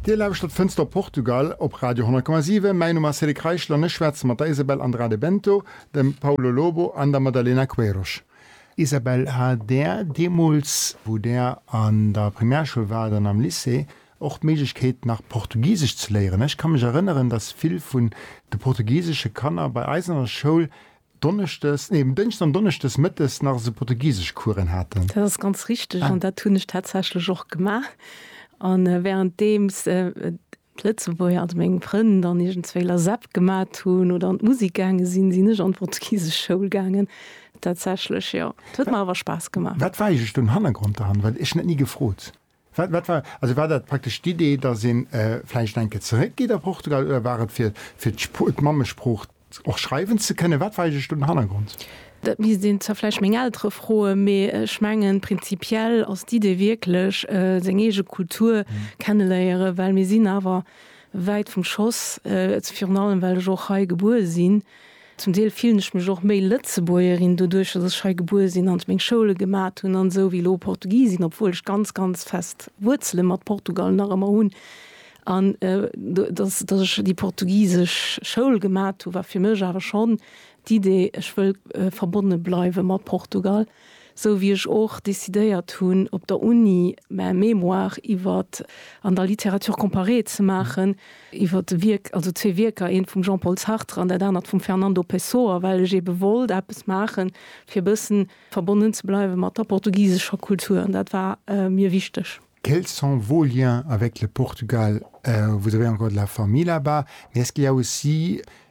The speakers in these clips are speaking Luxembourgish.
Dir lauschtert Fënster op Portugal op Radio 10,7. Mäin Numm ass Cédric Reichel an ech schwätze mat der Isabel Andrade Bento, dem Paulo Lobo an der Madalena Queiroz. Isabel, hat Där deemools, wou Där an der Primärschoul waart an am Lycée, och d'Méiglechkeet, nach Portugisesch ze léieren? Ech ka mech erënneren, datt vill vun de portugisesche Kanner bei eis an der Schoul Donneschdes, nee um Dënschdes an Donneschdes mëttes nach esou portugisesch Coursen haten. Dat ass ganz richteg an dat hunn ech tatsächlech och gemaach an während deems d'Lëtzebuerger, also meng Frënn dann iergendswéi LASEP gemat hunn oder an d'Musik gaange sinn, sinn ech an d'portugisesch Schoul gaangen. Tatsächlech jo, et huet mer awer Spaass gemaach. Wat war eigentlech den Hannergrond derhannert? Well ech hunn dat ni gefrot. Wat, wat war, also war dat praktesch d'Idee, dass ee vläicht enke zeréckgeet a Portugal, oder war et fir, fir d'Spr-, d'Mammesprooch och schreiwen ze kënnen? Wat war eigentlech do den Hannergrond? Dat misst een zwar vläicht meng Eltere froen, mee ech mengen, prinzipiell ass d'Idee wierklech, seng eege Kultur kenneléieren, well mir sinn awer wäit vum Schoss, virun allem well ech och hei gebuer sinn. Zum Deel fillen ech mech och méi Lëtzebuergerin doduerch, dass ech hei gebuer sinn an meng Schoule gemat hunn an esou wéi elo Portugisin, obwuel ech ganz, ganz fest Wuerzele mat Portugal nach ëmmer hunn. An dass, dass ech déi portugisesch Schoul gemat hu war fir mech awer schonn d'Idee, ech wëll verbonne bleiwe mat Portugal. Sou wéi ech och decidéiert hunn op der Uni mä Mémoire iwwer an der Littérature comparée ze maachen, iwwer de Wierk, also zwee Wierker, eent vum Jean-Paul Sartre an dat anert vum Fernando Pessoa, well ech eebe wollt eppes maachen, fir e bëssen verbonnen ze bleiwe mat der portugisescher Kultur. An dat war mir wichteg. Quels sont vos liens avec le Portugal? Vous avez encore de la famille là-bas? Mais est-ce qu'il y a aussi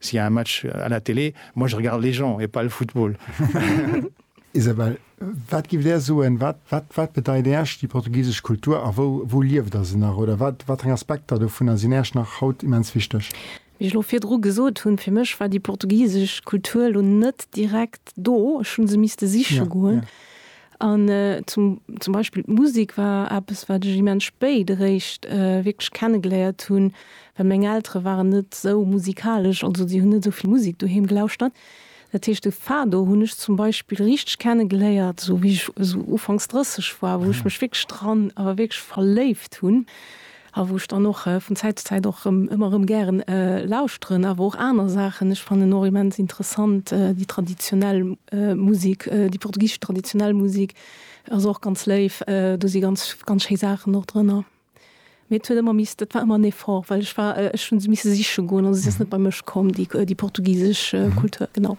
S'il y a un match à la télé, moi je regarde les gens et pas le football. Isabelle, wat giff Där soen, wat, wat, wat bedeit Äerch déi portugisesch Kultur a wou, wou lieft Der se nach oder wat, wat eng Aspekter dovunner sinn Äerch nach haut immens wichteg? Wéi ech lo virdru gesot hunn, fir mech war déi portugisesch Kultur lo net direkt do, ech hu se misste siche goen. An zum, zum Beispill d'Musik war eppes, wat ech immens spéit eréischt wierklech kenne geléiert hunn, well meng Eltere waren net esou musikalesch, also déi hunn net esou vill Musik doheem gelauschtert. Dat heescht, de Fado hunn ech zum Beispill richteg kenne geléiert, esou wéi ech esou ufanks 30 war, wou ech mech wierklech dran, awer wierklech verléift hunn. A wou ech dann och vun Zäit zu Zäit och rëm, ëmmer rëm gären lauschteren. Awer och aner Saachen. Ech fannen och immens interessant déi traditionell Musek, déi portugisesch traditionell Musek ass och ganz léif. Do si ganz, ganz schéi Saachen och drënner. Mee et huet ëmmer misst, et war ëmmer en Effort, well ech war, ech hu se misse siche goen. Also se ass net bei mech komm, déi, déi portugisesch Kultur, genau.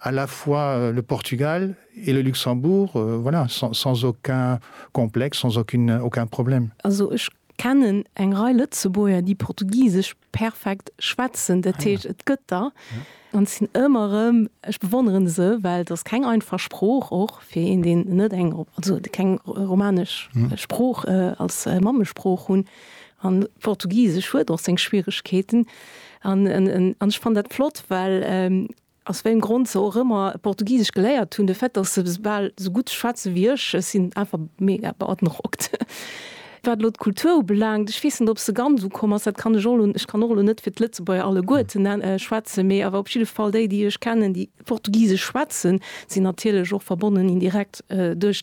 à la fois le Portugal et le Luxembourg, voilà, sans aucun complexe, sans aucune, aucun problème. Also ech kennen eng Rei Lëtzebuerger, déi Portugisesch perfekt schwätzen, dat heescht, et gëtt der. An et sinn ëmmer erëm, ech bewonnere se, well et ass keng einfach Sprooch, och fir een, deen net eng, also keng romanesch Sprooch als Mammesprooch hunn. An Portugisesch huet och seng Schwieregkeeten. An ech fannen dat flott, well Aus wéiem Grond se och ëmmer Portugisesch geléiert hunn, de Fait, dass se bal sou gutt schwätze wéi ech, ech sinn einfach mega beandrockt. Wat elo d'Kultur ubelaangt, ech weess net, ob se ganz ukomm ass, dat kann ech och elo, ech kann och elo net fir d'Lëtzebuerger alleguerten schwätzen, mee awer op jidde Fall déi, déi ech kennen, déi Portugisesch schwätzen, sinn natierlech och verbonnen indirekt duerch.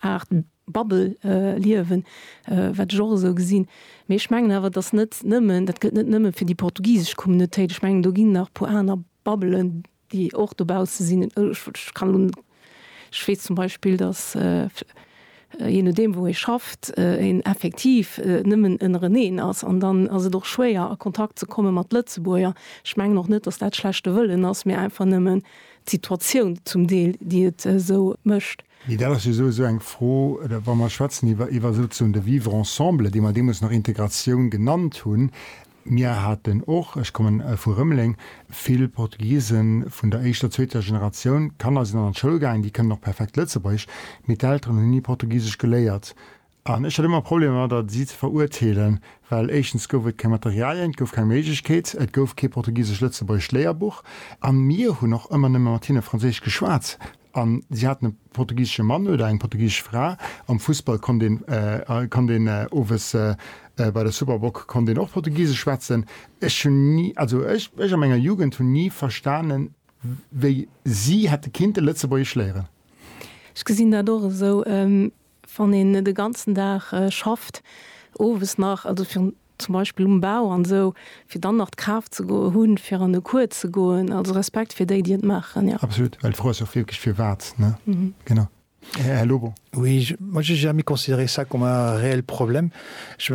Art Bubble-Liewen, wat ech och esou gesinn. Mee ech mengen awer, dass net nëmmen, dat gëllt net nëmme fir déi portugisesch Communautéit, ech mengen, do ginn nach e puer aner Bubbelen, déi och dobausse sinn. Ech kann elo, ech weess zum Beispill, dass, jee nodeem wou ee schafft, een effektiv nëmmen ënnereneen ass. An dann ass et och schwéier a Kontakt ze komme mat Lëtzebuerger. Ech mengen och net, dass dat schlechte Wëllen ass, mee einfach nëmmen d'Situatioun zum Deel, déi et esou mécht. Mee dat ass jo esou esou eng Fro, wa mer schwätzen iwwer iwwer souzesoen de Vivre ensemble, dee mer deemools nach Integratioun genannt hunn. Mir haten och, ech komme vu Rëmeleng, vill Portugisen vun der éischter, zweeter Generatioun. D'Kanner sinn dann an d'Schoul gaangen, déi kënnen och perfekt Lëtzebuergesch, mee d'Elteren hunn ni Portugisesch geléiert. An ech hat ëmmer Problemer mat der, si ze veruerteelen, well éischtens gouf et keng Materialien, et gouf keng Méiglechkeet, et gouf kee portugisesch-lëtzebuergesch Léierbuch a mir hunn och ëmmer nëmme mat hinne franséisch geschwat a si haten e portugisesche Mann oder eng portugisesch Fra. Am Fussball konnt een, konnt een owes bei der Superboc konnt een och portugisesch schwätzen. Ech hunn ni, also ech, ech a menger Jugend hunn ni verstanen, wéi si hätte kinnte lëtzebuergesch léieren. Ech gesinn dat och esou. Wann een de ganzen Dag schafft, owes nach, also fir zum Beispill um Bau an esou, fir dann nach d'Kraaft ze hunn, fir an de Cours ze goen. Also Respekt fir déi, déi et maachen, jo. Absolut. Well d'Fro ass jo och wierklech, firwat, ne? Genau. Här Lobo. Oui, moi, j'ai jamais considéré ça comme un réel problème. Je,